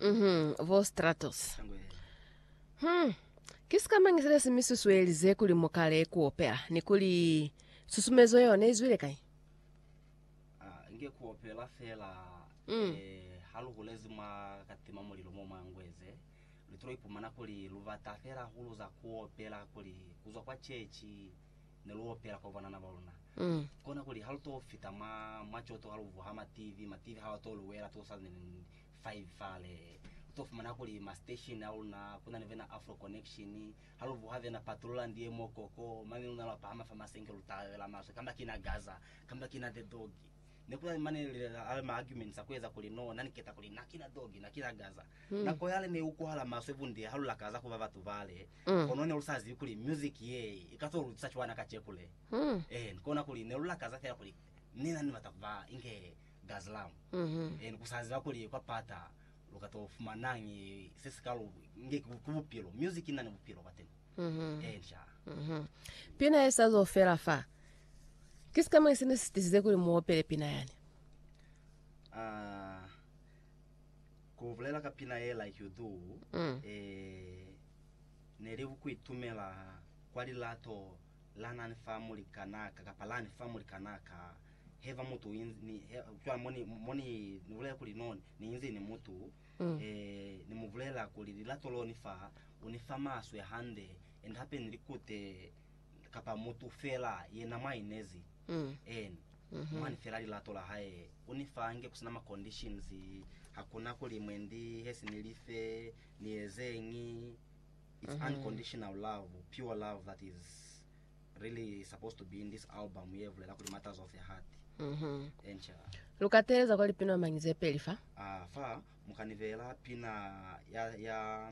Mhm, vo Stratos. Hmm. Ki sikamañi sile si mi susuelize kuli mu kale ku opela, ni kuli susumezo yeo ne i zwile kai? Ah, nge ku opela fela Mm. eh, ha lu hulezi mwa ka tima mulilo mo mwa ngweze lu tilo ipumana kuli lu bata fela hahulu za ku opela kuli ku zwa kwa chechi Ne lu opela kwa banana ba luna, kona kuli ha lu to fita mwa, mwa coto ha lu vuha mativi, mativi ha wa to lu wela too sa ni five fale. Lu to fumana kuli ma station a luna ku na ni vena Afro Connection, ha lu vuha vena Patroland ye mo koko, mane luna lwa pahama fa masenke lu talabela maswe, kamba ki na Gaza, kamba ki na The Dog. Ne ku na ni mane lilala, ma arguments a ku eza kuli no, na ni keta kuli na ki na Dog, na ki na Gaza. Nako yale ne i ukuhala maswe bunde ha lu lakaza ku ba batu bale. Kono ne lu sa zibi kuli music ye i ka to lu tusa cwana kaceku le. Eeni, kona kuli ne lu lakaza fela kuli ne na ni bata ku ba inge Gazlam. Eeni, ku sa ziba kuli kwa pata lu ka to fumanañi se si ka lu nge ki ku bupilo. Music i na ni bupilo kwateni. Eeni, shaa. Pina ye sa zo fela fa. Ki sikamañi se ne si tisize kuli mu opele pina yani? Aa. Ku bulela ka pina ye like you do e ne li ku itumela kwa lilato la nani fa mulikanaka kapa lani fa mulikanaka he va mutu ni he cwale mo ni mo ni ni bulela kuli no ni inzi ni mutu e ni mu bulela kuli lilato lo ni fa u ni fa maswe hande and hape ni likute kapa mutu fela yena mwa inezi Eeni, mwani fela lilato la hae. U ni fa nge kusina ma conditions. Hakuna kuli mwendi hesi ni life, ni ezeñi. It's unconditional love, pure love that is really supposed to be in this album ye vulela kuli matters of the heart. Eeni cha. Lu ka teeleza kwa lipina mañi ze peli fa? Ah, fa mu ka ni beela pina ya, ya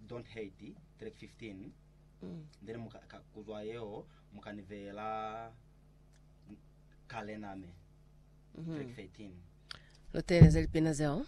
Don't Hate, track 15. Then mu ka, ka, ku zwa yeo Mu ka ni veyela kalena me. Track 13. Lu teeleze lipina zeo.